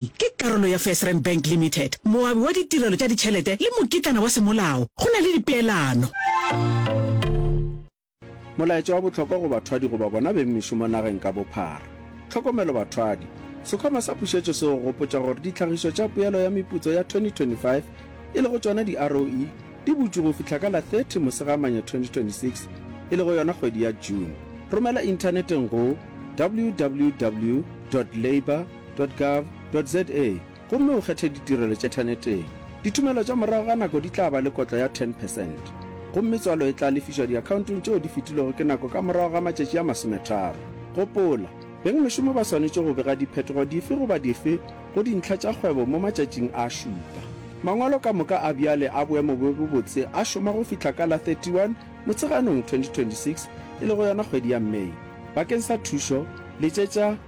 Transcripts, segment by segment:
ke karolo ya FirstRand Bank Limited, moabi wa ditirelo tša ditšhelete le mokitlana wa semolao go na le dipeelano. Molaetša wa bohlokwa go bathwadi goba bona beng mešomo nageng ka bophara. Tlhokomelo bathwadi, Sekhwama sa Pušetšo se go gopotša gore ditlhagišo tša poelo ya meputso ya 2025, e lego tšona di-ROE, di butšwe go fihla ka la 30 Mosegamanya 2026, e lego yona kgwedi ya June. Romela inthaneteng go www dot labour Gov.za gomme o kgethe ditirelo tše thaneteng. Ditumelo tša morago ga nako di tla ba le kotlo ya 10 percent gomme tswalo e tla lefišwa diakhaontong tšeo di fetilwego ke nako ka morago ga matšatši a masometharo. Gopola, beng mešomo ba swanetše go bega diphetogo dife goba dife go dintlha tša kgwebo mo matšatšing a šupa. Mangwalo ka moka a bjale a boemo bjo bo botse a šoma go fihla ka la 31 Motsheganong 2026, e lego yona kgwedi ya May. Bakeng sa thušo, letšetša.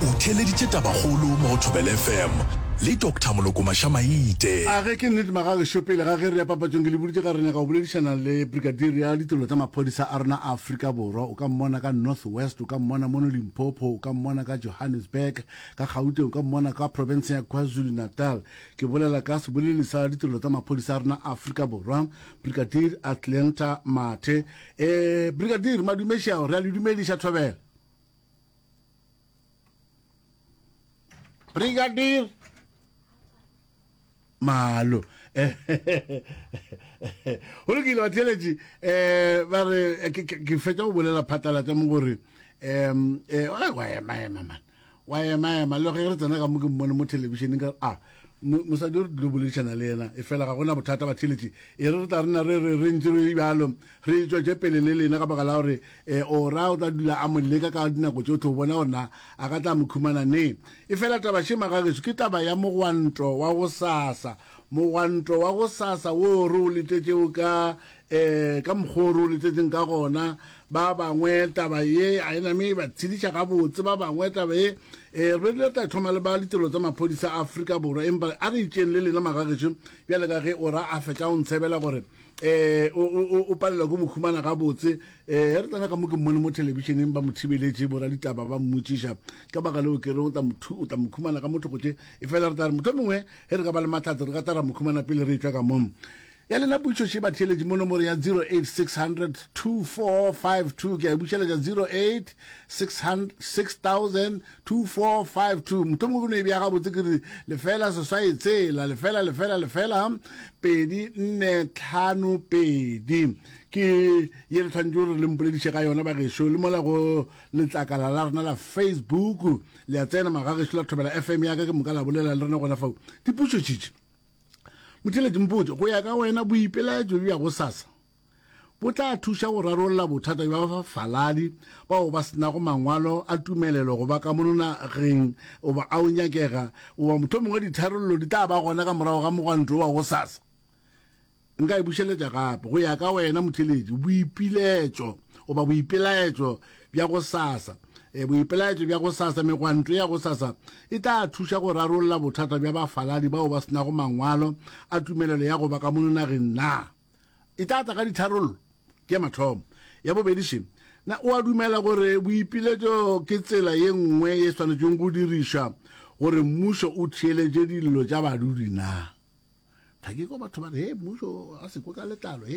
O theeleditše tabakgolo mo go Thobela FM le Doctor Molokomasha Maite. A ge ke nnete magagešo, pele ga ge re ya papatšong ke le boditše ka re nyaka go boledišana le Brigadier ya ditirelo tša maphodisa a rena a Afrika Borwa. O ka mmona ka North West, o ka mmona mono Limpopo, o ka mmona ka Johannesburg, ka Gauteng, o ka mmona ka profenseng ya KwaZulu Natal. Ke bolela ka seboleleli sa ditirelo tsa maphodisa a rena a Afrika Borwa, Brigadier Athlenta Mathe. Eh, Brigadier, madumeši ao, re a le dumediša Thobela. Brigadier malo go lokile batheletši um eh, ba re eh, ke fetsa go bolela phatlalatsa mo gore um wa emaema man wa emaema le ge re tsena ka mo ke mmone mo thelebišeneng ka a ah, mosadi o re dilo boledišana le yena e fela ga gona bothata batheletši e re re tla rena re re re ntse re bjalo re e tšwetše pele le lena ka baka la gore e eh, o ra o tla dula a mo leka ka dinako tsotlhe o bona gorena a ka tla mo khumana ne e fela taba shema ga geso ke taba ya mogwanto wa go sasa mogwanto wa go sasa wo re o letetšeo ka Ee, ka mokgwa o re o letšetšeng ka gona, ba bangwe taba ye a e name e ba tshediša gabotse. Ba bangwe taba ye, ee, re be re tla thoma le ba Ditirelo tsa Maphodisa a Afrika Borwa, empa a re itšeng le lena magagešo, bjale ka ge o ra a fetša o ntshebela gore ee, o, o, o, o palela ke mo humana gabotse. Ee, re tsena ka mo ke mmone mo thelebišeneng, ba mo thibeletše, boraditaba ba mmotšiša ka baka leo ke reng o tla mo, o tla mo humana ka mo thoko tše, efela re tla re mohlomongwe ge re ka ba le mahlatse re ka tla ra mo humana pele re etšwa ka mo. Ya lena putšo še batheeletši mo nomoro ya 0860024452 ke a e bušeletša 0860002452 mohlomongwe ke no e bea gabotse ke re lefela seswai tshela lefela lefela lefela pedi nne tlhano pedi ke ye re tshwanetse gore le mpolediše ka yona bagešo le mola go letlakala la rena la facebook le a tsena magagešu la thobela fm yaka ke moka la bolela le rena gona fao dipušo tšitši Motheletši, Mpotše, go ya ka wena boipelaetšo bja go sasa bo tla thuša go rarolla bothata bja bafaladi bao ba senago mangwalo a tumelelo go ba ka mono nageng goba a o nyakega goba mohlomongwe ditharollo di tla ba gona ka morago ga mogwanto wa go sasa? Nka e bušeletša gape, go ya ka wena motheeletši, boipiletšo, goba boipelaetšo bja go sasa. E, boipelaetšo bja go sasa, megwanto ya go sasa, e tla thuša go rarolla bothata bja bafaladi bao ba senago mangwalo a tumelelo ya go ba ka mono nageng na? E tla tla ka ditharollo? Ke ya mathomo. Ya bobedi, še na o a dumela gore boipiletšo ke tsela ye nngwe ye swanetšweng go dirišwa gore mmušo o theeletše dillo tša badudi na? Thakiko, Batho ba re, Hee, mmušo a se kwe ka letlalo.